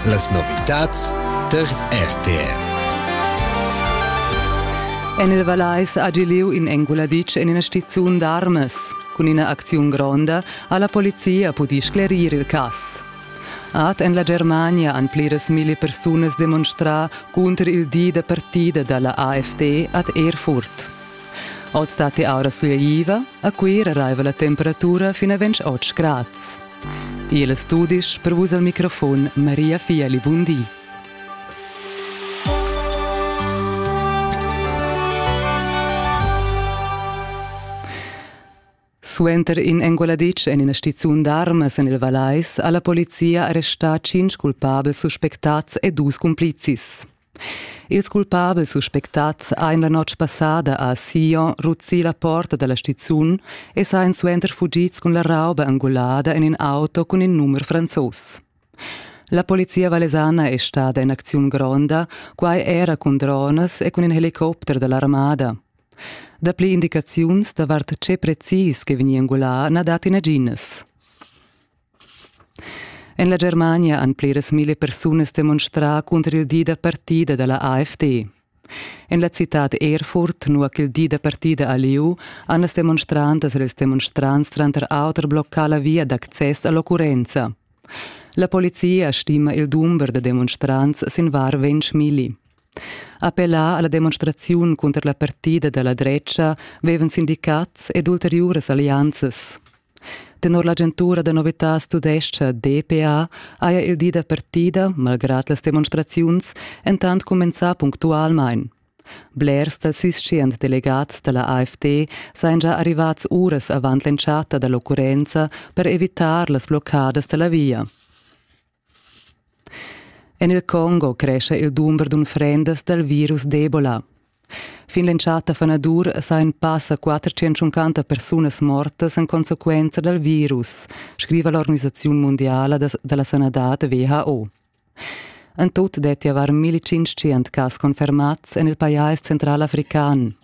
Las novitads tar RTR. En il Valais ha gi lieu in enguladic en ina stiziun d'armas. Cun ina acziun gronda ha la polizia pudì sclerir il cass. Ad en la Germania han pliras milli persunas demonstrà cunter il di da partida da la AFD ad Erfurt. Oz datti aura sulegliva, a Cuira raiva la temperatura fin a 28 grads. Igl studis per vus al microfon Maria Fiali Bundi. Suenter in enguladitsch en ina stizun d'armas en il Vallais ha la polizia arrestà tschintg culpabels suspectads e dus cumplizis. Ils culpabels suspectads ein la notg passada a Sion ruzzì la porta dalla stizun e sain suenter fugids cun la rauba angulada en in auto cun in numer franzos. La polizia vallesana è stada in acziun gronda, quai era cun dronas e cun in helicopter dall'armada. Dapli indicaziuns davart tge precis che vegni engulà na dat naginas. En la Germania han pliras mille persunas demonstrà cunter il di da partida da la AfD. En la citad Erfurt, nua ch'il di da partida a lieu, han las demonstrantas e ils demonstrants tranter auter bloccà la via d'access a l'occurrenza. La polizia stima il dumber da demonstrants sin var ventg milli. Appellà alla demonstraziun cunter la partida dalla drecha vevan sindicats ed ulteriuras allianzas. Tenor l'agentura da novitas tudescha DPA haja il di da partida, malgrad las demonstraziuns, entant cumenzà punctualmain. Blers dals tschient delegats da la AFD sajan già arrivads uras avant l'entschatta da l'occurrenza per evitar las bloccadas da la via. En il Congo crescha il dumber d'unfrendas dal virus d'Ebola. Fin l'entschatta fanadur sajan passa 450 persunas mortas en consequenza dal virus, scriva l'organisaziun mundiala da la sanadad WHO. En tut dettia var 1500 cas confermads en il pajais centralafrican,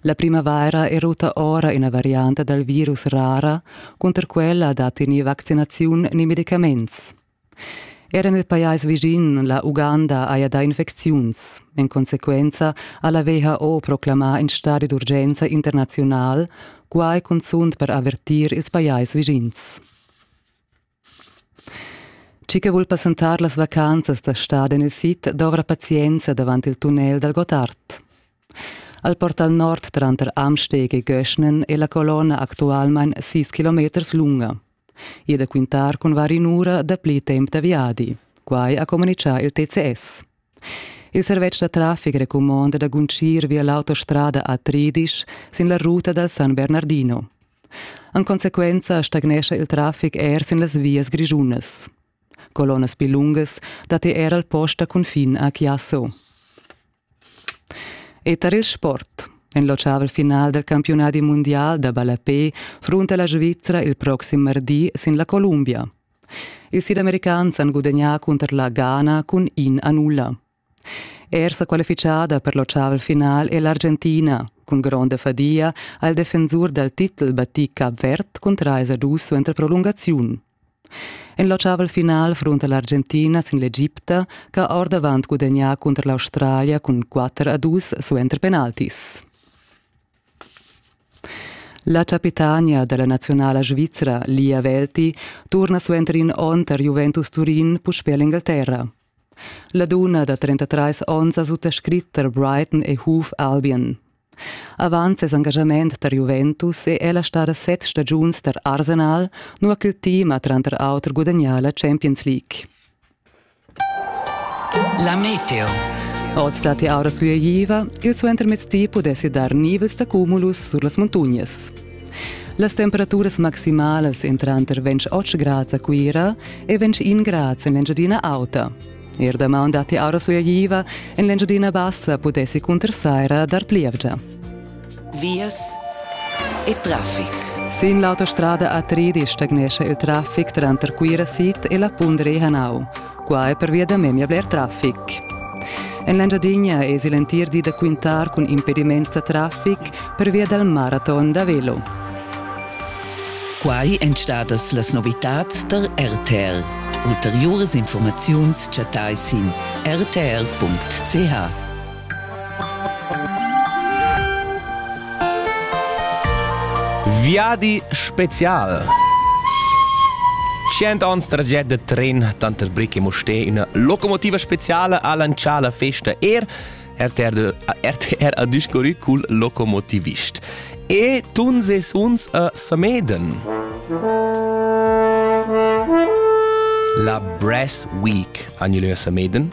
La primavaira è rutta ora ina varianta dal virus rara, cunter quella datti ni vaccinaziun ni medicaments. Era nel pajais vischin la Uganda haja dà infecziuns. En consequenza ha la WHO proclamà in stadi d'urgenza internaziunal, quai cunzunt per avertir ils pajais vischins. Chi che vul passentar las vacanzas da stad en il sid dovra pazienza davant il tunnel dal Gottard. Al portal nord tranter Amsteg e Göschnen è la colonna actualmain 6 km lunga. Ì da quintar cun var in'ura dapli temp da viadi. Quai ha communitgà il TCS. Il servetsch da traffic recumonda da guntgir via l'autostrada a Tridisch sin la ruta dal San Bernardino. En consequenza stagnescha il traffic er sin las vias grischunas. Colonnas pli lungas datti er al post da cunfin a Chiasso. E tar il sport. En l'oceavel final del campionati mondial da ballapé frunta la Svizzera il proxim mardi sin la Columbia. Ils sidamericans han gudagnà cunter la Ghana cun in a nulla. Er sa qualifichada per l'ottavel final è l'Argentina, cun gronda fadia ha il defensur dal titel battì Cap Verd cun trais a dus suenter prolungaziun. En l'ottavel final frunta l'Argentina sin l'Egipta ch'ha ordavant gudagnà cunter l'Australia cun 4 a 2 suenter penaltis. La chapitania dalla naziunala svizra Lia Velti turna suenter in onn tar Juventus Turin puspè l'Engalterra. La dunna da 33 onns ha suttascrit tar Brighton e Hoof Albion. Avant ses engagament tar Juventus è ella stada set stagiuns tar Arsenal, nua ch'il team ha tranter auter gudagnà la Champions League. La meteo. Oz datti auras fluiva, il suentermezdi pudessi dar nivels d'accumulus sur las muntognas. Las temperaturas maximalas èn tranter 28 grads a Cuira e 21 grads en l'Engiadina Auta. Er damaun datti auras fluiva, en l'Engiadina Bassa pudessi cunter saira dar plievgia. Vias e traffic. Sin l'autostrada A3 stagnescha il traffic tranter Cuira Sid e la Pundre Hanau. Qua è pervia da memia bler traffic. En l'Engiadinha èsi l'entir di da quintar cun impediments da traffic pervia dal maraton da velo. Quai èn stadas las novitads tar RTL. Ulteriuras informaziuns chattai sin rtl.ch. Viadi special. Cient ans traget de tren tanter Brick e Mustè üna locomotiva speciale a lanciar la festa er RTR, RTR a discorrü cul locomotivist. E tun ses uns a Sameden. La Brass Week, annual a Sameden,